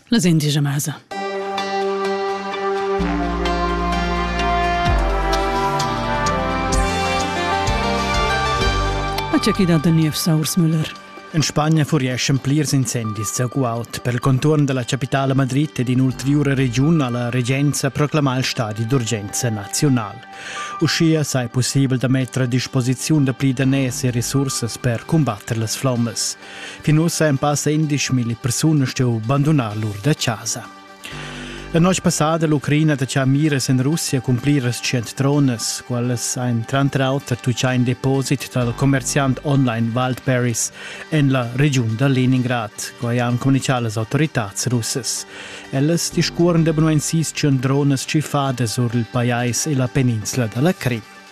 Las indigia masa. C'è chi dat da niev Saursmüller. In Spagna fureschan plirs incendis a Guaut per il contorn dalla capitale Madrid ed in'ulteriura regiun alla regenza proclama il stadi d'urgenza nazional. Uschia sei possibel da metter a disposiziun da pli daners e resursas per combatter las flommas. Fin ussa en passa 11.000 persunas stuiu bandunar lur da casa. La noce passada l'Ucraina da Chamiras in Russia cun pliras cent tronas, quelles ein tranter auter tuccia in deposit dal commerciant online Wildberries en la regiun da Leningrad, quai han comunicato las autoritàs russas. Ellas discuoren da benuensis tschun dronas tschiffadas sur il pajais e la peninsula dalla Crim.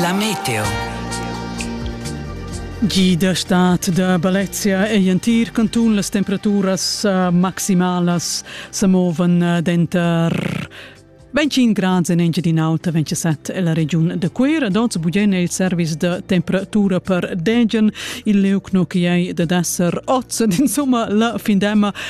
La meteo. Gida stat da Balezia ei entir cantun las temperaturas uh, maximalas sa movan uh, denter 25 grads en Engiadin'Alta, 27 e la regiun da Cuira. Dots bugen è il service da temperatura per Degen, il leucno che è da desser oz. Insomma, la findema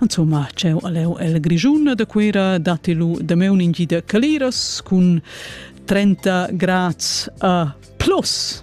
Insomma, c'è aleu el Grischun da Cuira datti lu da meu ningida caliras cun 30 grads a plus.